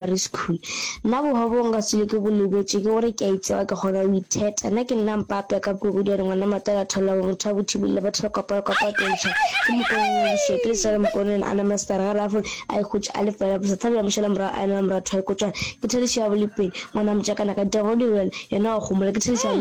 Primary School. Nna bohwa boo nka se le ke bo lebetše ke gore ke a itseba ke kgona go itheta. Nna ke nna mpapja ka puku di a re ngwana matala tholago motho a bothibile batho ba kopana kwa pakentsha ke mokoneng wa dišoke le sa le mokoneng a nama star ga rafo a ikhutša a le fela bosa thabja mošala morago a enela moratho wa ikotšana ke thadišo ya bolepeng ngwana motšakana ka dira go direla yena wa kgomola ke thadišo ya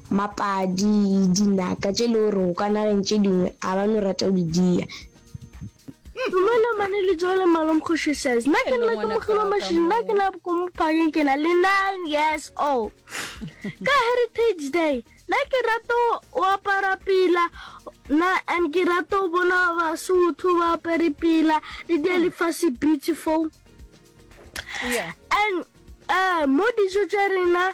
Mapadi, dinaka tše e le gore go ka nageng tše dingwe a ba no rata go di dia. Dumela mane le joe le malom kgoši says nna ke nna ke mogilwa mashini nna ke na boko mo phakeng ke na le nine years old ka heritage day nna ke rata o apara pila na and ke rata o bona basotho ba apere pila le dia lefase beautiful and um mo dijo tša rena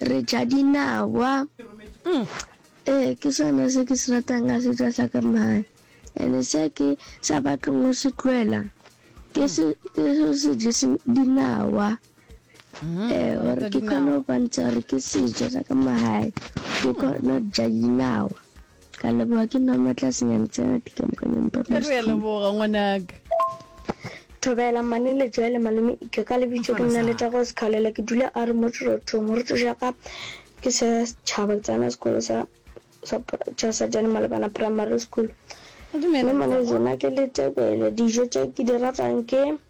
re ja dinawa. Umm ee ke sona se ke se ratang ka setšo sa ka mmae and se ke sa batlong go se tloela ke se ke se se je se dinawa mm-hmm. eh gore ke kgone go bontsha gore ke setšo sa ka mmae ke kgone go ja dinawa Ke a leboga ke nna Matlasenyane tsena dikamokanyong ba Ke re a leboga ngwanaka. Thobela, Mmane Letswele, Malome Ika, ka lebitso ke nna Letago Sekhalela ke dula a re mo Tšhorothong. Moruti ja ka ke sa tšhaba ke tsena sekolo sa sa tša Sajane Malebana Primary School. Mme Mmane Letswele nna ke le tebele dijo tše ke di ratang ke.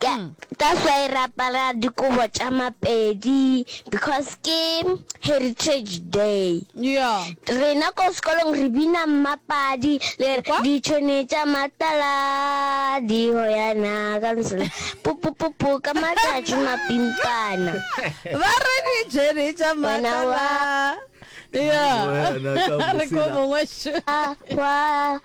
Ka that's why re apara dikobo tša mapedi because ke heritage day. Yeah. Rena ko sekolong re bina mmapadi le re Kwa? ditšhone tša matala di hoyana ka nsela pupupupu ka matšatši mapimpana. ba re ditšhene tša Wena wa- matala Yeah. Wena ka re ko mosela. mongwe šo Ah, Hwa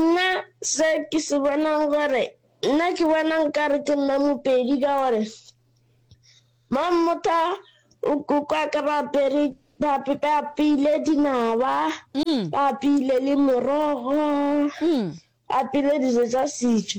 Nna se ke se bonang gore, nna ke bona nkare ke nna Mopedi ka gore Mammotha o kukwa ka ba apere ba apeile dinaba, ba apeile le morogo, ba apeile dijo tsa setso.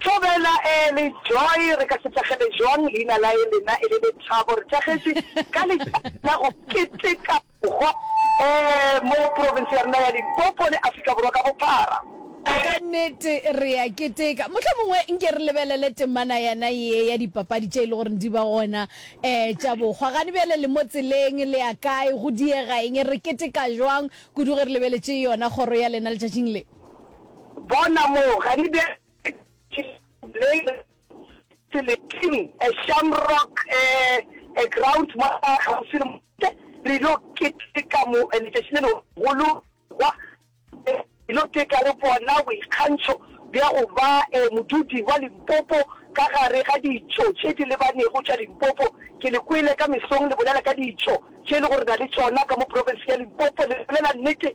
Thobela early joy re ka se thakgele jwang leina la e lena e le lethabo re thakgetše ka letšatši la go keteka bohwa um mo province ya rena ya limpopo le afrika borwa ka bophara Ka nnete re a keteka. Mohlomongwe nke re lebelele temana yana ye ya dipapadi tše e le gore di ba gona um tša bohwa. Gane bjale le mo tseleng le ya kae, go diega eng, re keteka jwang kudu ge re lebeletše yona kgoro ya lena letšatšing le? Bona moo, ga di bjale ke Blaine Seleting, a Shamrock, a, a ground mo kgauswi le motse, re ylo keteka mo letšatši le legolo kwa, re ylo keteka le bona boikgantšho bja go ba a modudi wa Limpopo ka gare ga ditšo tše di lebanego tša Limpopo. Ke le kwele ka mesong le bolela ka ditšo tše e lego re na le tšona ka mo profenseng ya Limpopo, le bolela nnete.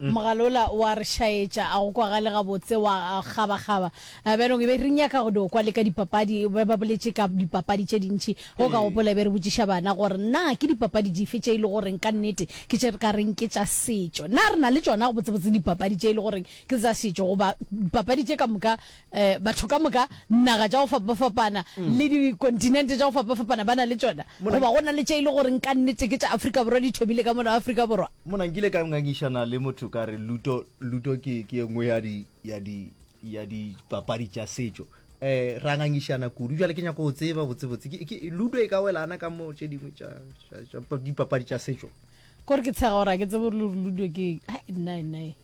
Mogalola o a re šaetša, a go kwagale gabotse, wa kgabakgaba. Bjalo e be re nyaka go dio kwa le ka dipapadi, be ba boletše ka dipapadi tše dintši. Go ka gopola e be re botšiša bana gore na ke dipapadi dife tše e le goreng ka nnete ke tše re ka reng ke tša setšo. Na re na le tšona gabotsebotse dipapadi tše e le goreng ke tsa setšo goba dipapadi tše ka moka Eh, batho ka moka, naga tša go fapafapana mm. le dikontinente tša go fapafapana ba na le tšona goba go na le tše e le gore nka nnete ke tša afrika borwa di thomile ka mona afrika borwa mona nkile ka ngangišana le motho ka re luto luto ke ke e nngwe ya di ya di ya dipapadi tša setšo eh ra ngangišana kudu jale ke nyako go tseba botsebotse ke ludo e ka welana ka mo tše dingwe tša dipapadi tša setšo kore ke tshega gore a ke tsebe gore ludo ke nnae nnae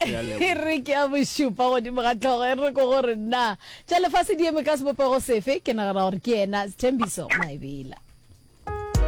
e re ke a bošupa godimo ga tlhogo e re ko gore nna tša lefase di eme ka sebopego sefe ke nagana gore ke ena sethembiso maebela